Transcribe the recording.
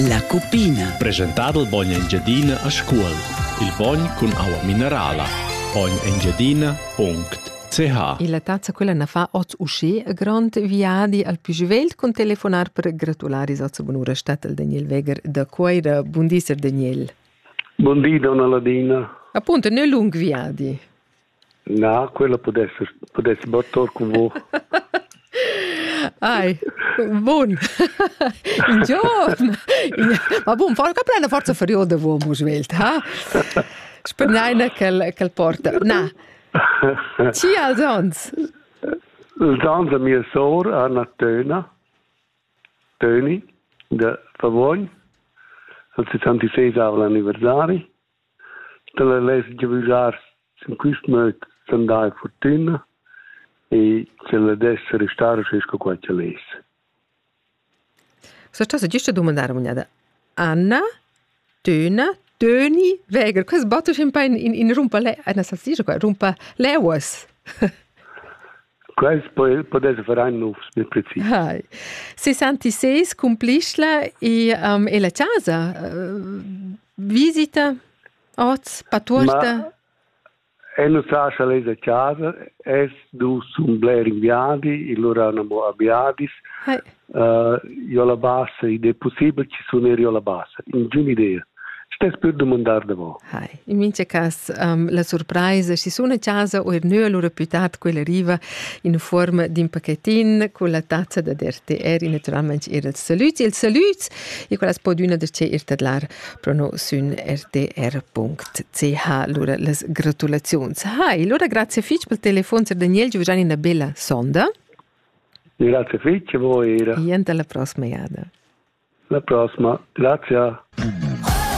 La cupina. Presentadel bogn Engiadina a Scuol. Il bogn cun aua minerala. bognegengiadina.ch Il tazza quella na fa ot usché a grond viadi al più svelt con telefonar per gratulare is ozza bunura statel Daniel Weger da Coira. Buondisser Daniel. Buondì, donna Ladina. Appunto, ne lung viadi. Na, quella pudess, pudess battar cun mo. Ai, bun. In giorn. Ma bun, far che plena forza furiol de uomo svelt, ha? Spenneina quel, quel porta. Na. Ci als ons? Els ans da mia sor, Anna Töna, Töni, de Favogn, al 66 avla anniversari, Dalla less giavüschar sün quist möd s'andar in furtüna e sch'el dess restar schi sco qua ch'el es. Sa chasa giüsta dumandar amugnada? Anna, Töna, Töni, Weger, quels battesch in pain in, in rumpa le... Anna salsischa qua, rumpa leuas. Quels podes far nufs, bil precis. Hai. 66 cumplisla e, um, e la chasa. Uh, Visita oz, patuorta? E nu sascha lez da casa, es dus sun bler in viadi, illura ün amo a Biadis. Hai. Uh, io la bassa, id è possibile che suoner io la bassa, in giun idea. Stess per domandar da vo. Hai. In mincha cas um, la surpraisa, si suna casa o er nö, allura più tard quella arriva in forma d'in pacchettin con la tazza da RTR, naturalmente er els saluts. Ils saluts e quella as po düna da che ir tadlar pro no sün rtr.ch. Lura las gratulaziuns. Ha, e lura grazie fich pel telefon, Sir Daniel, giu già una bella sonda. Grazie fitch, buoira. E alla prossima jada. La prossima, grazie.